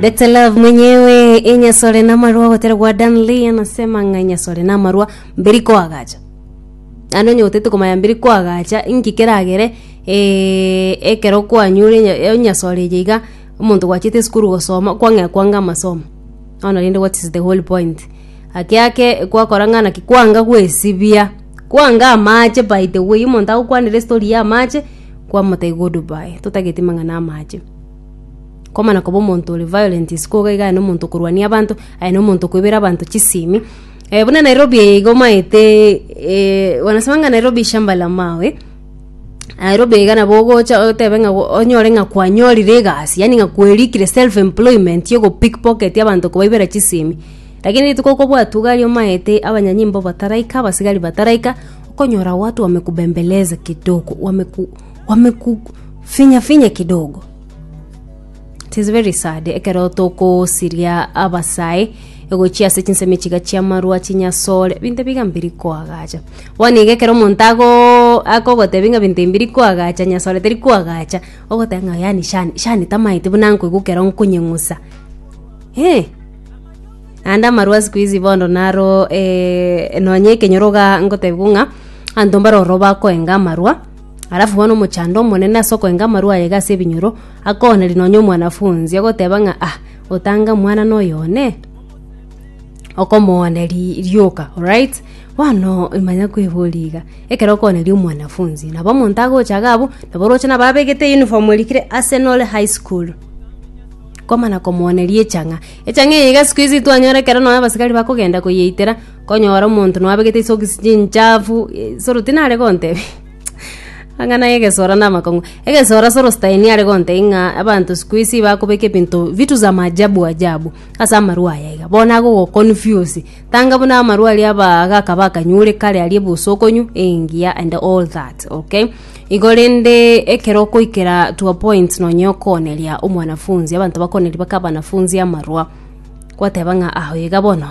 Better Love mwenyewe enyasore namarwa gotera gwa Dan Lee anasema ng'a enyasore namarwa mberi koagacha ande onye gotete komanya mberi koagacha inki keragere eh, ekero kwanyure enya- enyasore eye iga omonto gwachete esukuru gosoma kwang'ekwa inga amasomo bono rende what is the whole point ake ake gwakora ng'a naki kwanga gwesibia kwanga amache by the way omonto agokwanera estori ya amache kwamotebia goodbye totagete mang'ana amache. Komana koba omonto ore violent isiko iga iga aye na omonto okorwania abanto, aye na omonto okoibera abanto chisimi. Eh, buna Nairobi eye iga omanyete eh, wanasemanga Nairobi shamba la mawe, Nairobi iga nabo ogocha otebe ng'a go- onyore ng'a kwanyorire egasi yaani ng'a kwerikire self employment ya ogopickpocket abanto kobaibera chisimi. Lakini rituko okobwatwa iga aria omanyete abanyanyimbo bataraika, abasigari bataraika, okonyora watu wamekubembeleza kidogo, wameku. wamekufinya finya kidogo it is very sad ekero tokosiria abasae egochia ase chinsemi chiga chiamarwa chinyasore ebinto ebiga mbiri koagacha bono iga ekero omonto ago akogotebi ng'a ebinto ebi mbiri koagacha nyasore teri koagacha ogoteba ng'a yaani shani shani tamaete buna nkoigwa ekero nkonyeng'usa eh naende amarwa sikuizi bono naro nonye ekenyoro iga ngotebiwa ng'a abanto mbare ororo bakoenga amarwa. Alafu bono omochando omonene ase okoenga amarwa aye iga ase ebinyoro, akooneria nonya omwanafunzi, agoteba ng'a ah, otanga omwana na oyo one, okomooneria rioka, alright. Bono manya kweboria iga, ekero okooneria omwanafunzi, nabo omonto agocha iga abwo, nabo oroche nabo abegete euniform erikire Arsenal High School, komana komooneria echang'a. Echang'a eye iga sikuizi twanyora ekero nonye abasigari bakogenda koyeitera. Konyora omonto noabegete isokisi chinchafu, Soro tinare gontebia amang'ana y'egesora na amakong'u. Egesora Soro Stein are gontebia ng'a abanto siku hizi bakobeka ebinto vitu za maajabu ajabu ase amarwa aya iga, bono agogoconfuse. Tanga buna amarwa aria abagaka bakanyure kare aria ebosokonywa, engiya and all that, okay? Igo rende ekero okoikera to a point nonye okooneria omwanafunzi, abanto bakooneria baka abanafunzi amarwa, Gwateba ng'a aho iga bono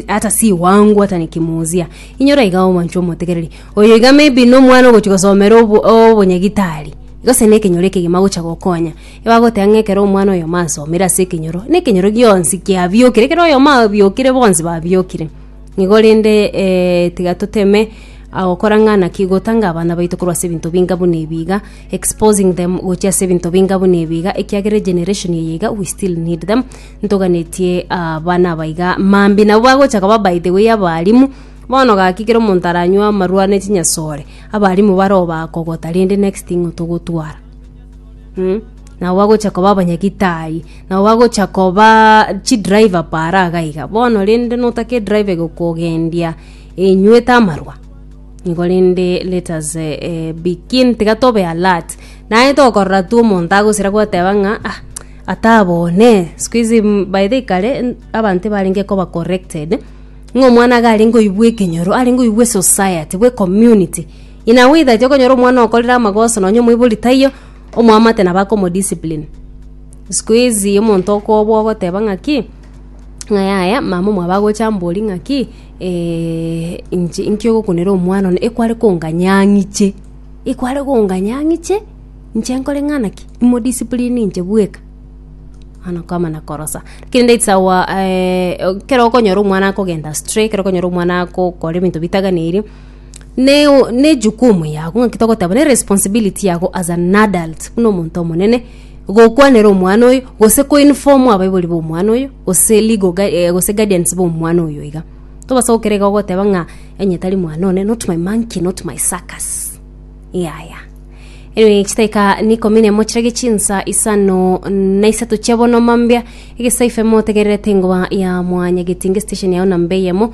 ata siwangu ata nikimuuzia inyora iga omoncho omotegereri oyo iga maybe nomwana ogochi gosomera obonyagitari gose na ekenyoro ekegima agocha gokonya ebagoteba ng'a ekero omwana oyo masomire ase ekenyoro na ekenyoro gionsi kiabiokire ekero oyomo abiokire bonsi babiokire nigo rende tiga toteme gokora ng'a naki gotanga abana baito korwa ase ebinto binga buna ebi iga. exposing them gochia ase ebinto binga buna ebi iga ekiagera egeneration eye iga we still need them ntoganetie abana aba iga mambi nabo bagocha kaba by the way abarimu bono gaki kero omonto aranywa amarwa ne chinyasore abarimu baroo bakogota rende next thing otogotwara mm? nabo bagocha koba abanyagitari nabo bagocha koba chidriver para iga iga bono rende notake edriver gokogendia enywete amarwa korende let us eh, begin tiga tobe alert naye tokorora tu omonto agosira gwateba ng'a ah ata abone sikuizi mm, by the kare mm, abanto barenge koba corrected ng'a omwana iga arenge oibwa ekenyoro arenge oibwa esociety bwe community in a way that okonyora omwana okorire amagoso nonye omoibori taiyo omwamate nabo akomodiscipline sikuizi omonto okobwa ogoteba ng'a ki. Ng'a yaya, mama omwabo agocha ambori ng'aki, eh, inche inki ogokunera omwana one, ekware konganya ang'iche, ekware konganya ang'iche, inche nkore ng'ana ki? Imodiscipline inche bweka. Bono nkomana korosa. Kende it's our eh, ekero okonyora omwana akogenda astray, ekero okonyora omwana akokora ebinto bitaganeirie. ne ne jukumu yago ng'aki togoteba ne responsibility yago as an adult buna omonto omonene gokwanera omwana oyo gose ko inform abaibori ba omwana oyo gose legal gua eh gose guardians ba omwana oyo iga tobasa gokora iga ogoteba ng'a onye tari mwana one not my monkey not my circus yaya anyway chiteka nikombia ne mochie gachie chinsa isano na isato chia bono mambia egesaife motegererete ngoba ya mwanyageti inge station yago namba eyemo.